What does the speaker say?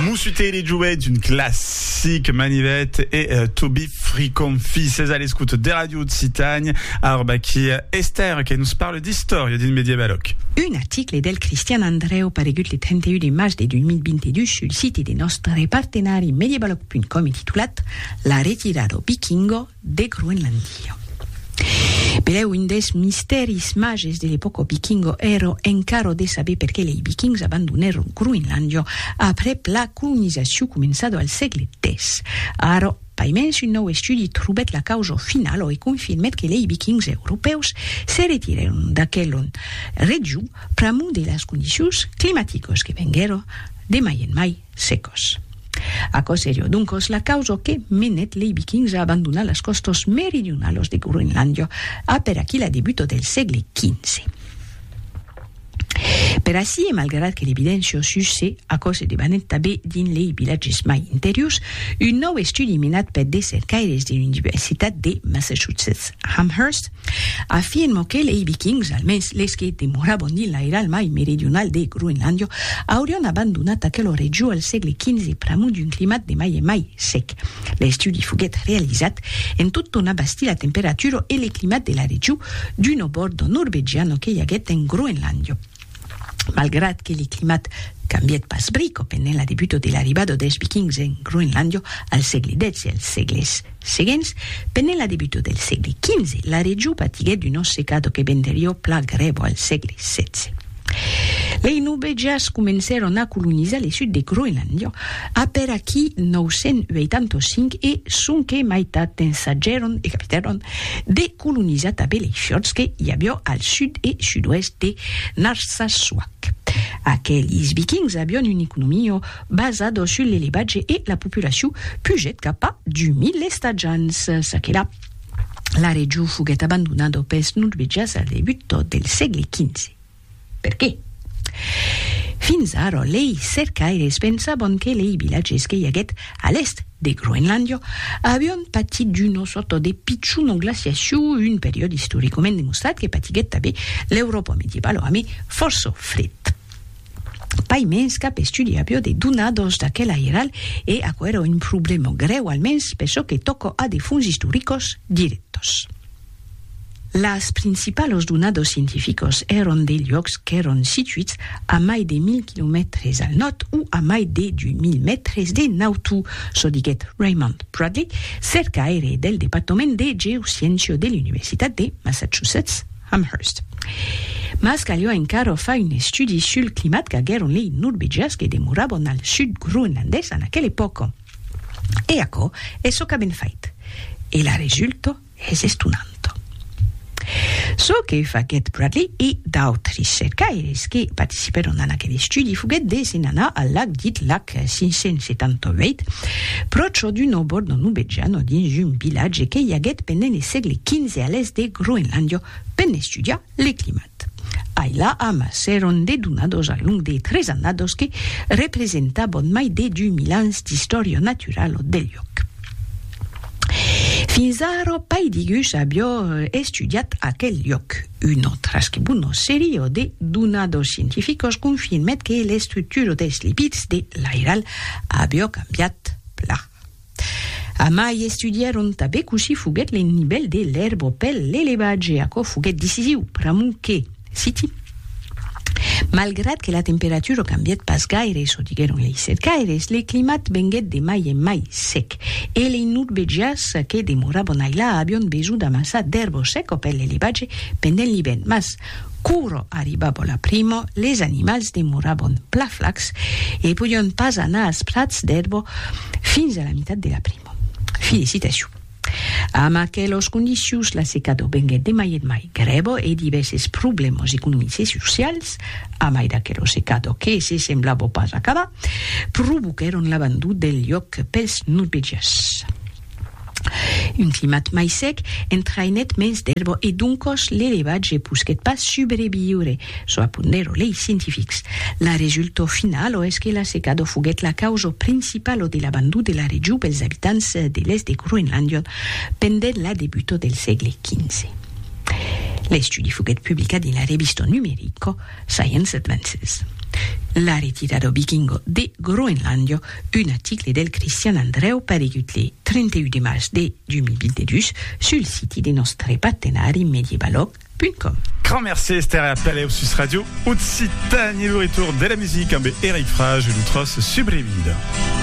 Moussutet les jouets d'une classique Manivet et euh, Toby Fricon Fils à l'écoute des radios de Citagne Arbaki Esther qui nous parle d'histoire d'une médiévaloque Un article del Christian Andreu paregut le 31 de març de 2022 sul site de nòstre partenari medievaloc.com e titulat La retirada au Vikingo, de Groenlandia. Benlèu un des mistèris mages de l'epòca vikinga èra encara de saber perqué lei vikings abandonèron Groenlandia aprèp la colonizacion començada al sègle X. Ara, paimens un nòu estudi trobèt la causa finala e confirmèt que lei vikings europèus se retirèron d'aquela region pr'amor de las condicions climaticas que venguèra de mai en mai secos. Aquò serió doncos la causa que menèt lei Vikings a abandonar las còstas meridionalas de Groenlàndia a per aquí la debuta del sègle XV. Per ací e malgrat que l'evidéncia sus se aquò se debanèt tabé dins lei vilatges mai interiors, un nòu estudi menat per de cercaires de l'Universitat de Massachusetts Amherst, Afirmo que lei Vikings, almens les que demoravan dins l'airal mai meridional de Groenlàndia, aurián abandonat aquela region al sègle XV pr'amor d'un climat de mai en mai sec. L'estudi foguèt realizat en tot ton abastir la temperatura e le climat de la region d'una borda norvegiana que i aguèt en Groenlàndia. Malgrat que le climat cambièt pas brico pendent la debuta de l'arribada dels Vikings en Groenlàndia al sègle xvi e als sègles seguents, pendent la debuta del sègle xv, la region patiguèt una secada que venderiá pla grèva al sègle xvi. Lei Nubèjas comencèron a colonizar le sud de Groenlàndia après aquí 985 e sonque maitat d'ensajèron e capitèron de colonizat a Beleichotz que i avió al sud e sud-oèst de Narsassuaq. Aquelis vikings avión un economio basado sul l'elevatge e la populaciu pugèt cap a 2000 estatjants. Çaquelà, la region foguèt abandonado pels norvegias al debut del sègle xv. Perqué? Fins ara, lei cercaires pensavan que lei vilatges que i aguèt a l'èst de Groenlàndia avián patit d'una sòrta de pichona glaciacion, un periòde istoricament demostrat que patiguèt tanben l'Euròpa medievala amé fòrça fred. Pas mens cap estudi aviá de donadas d'aquel airal e aquò èra un problèma grèu, almens per çò que tòca a de fonts istoricas dirèctas. Las principalos donados scientificos èron de luòcs qu'èron situits a mai de 1.000 quilomètres al nòrd o a mai de 2.000 mètres de nautu, çò diguèt Raymond Bradley, cercaire del departament de geosciéncia de l'Universitat de Massachusetts Amherst. Mas caliá encara far un estudi sul climat qu'aguèron lei norvegians que demorabon al sud groenlandés en aquela epòca. E aquò es çò qu'avèn fait. E la resulta? Es estonant çò que faguèt Bradley e d'autres cercaires que participèron en aquel estudi foguèt de se'n anar al lac dit lac 578, pròche d'un òbor de Nubejano dins un vilatge que i aguèt pendent le sègle xv a l'èst de Groenlàndia, per n'estudiar le climat. Ai la am s'èron dedonados al long de tres annados que representabon mai de dus mil ans d'istòria naturala del luòc. Fins ara pas digus aviá estudiat aquel luòc. Una trasquebuna seria de donados scientificas confirmèt que l'estructura dels lipids de l'airal aviá cambiat plan. Amai estudièron tabé cossí foguèt l'ennivèl de l'èrbo pel l'elevatge, aquò foguèt decisiu pr'amor que, citi, Malgrat que la temperatura cambièt pas gaire, çò diguèron lei cercaires, le climat venguèt de mai en mai sec, e lei nordvegians que demoravan ailà avián besonh d'amassar d'èrbo seca pel l'elevatge pendent l'ivèrn, mas Quoro arribavo la primo, les animals demorabon pla flacs e podion pas anar als prats d'erbo fins a la mitat de la primo. Felicitacion! Amb aquelos condicions la secado venguet de mai en mai grèvo e divèses problèmos economics e socials, a mai d'aquelo secado que se semblavo pas acabar, provoquèron l'abandon del lloc pels nopejars. Un climat mai sec entraïnèt mens d'èrba e doncòs l'elevatge posquèt pas subreviure, çò apondèro lei scientifics. La resultau finala es que la secada foguèt la causa principala de l'abandon de la region pels abitants de l'èst de Groenlàndia pendent la debuta del sègle xv. L'estudi foguèt publicat dins la revista numerica. Science Advances. La retira dau Vikingo de Groenlàndia, un article del Cristian Andrèu paregut le 31 de març de 2022 sul siti de nòstre partenari medievalog.com. Grand merci Esther e a talèu sus Radio Occitània, lo retorn de la musica ambe Eric Frage e lo tros Subrevida.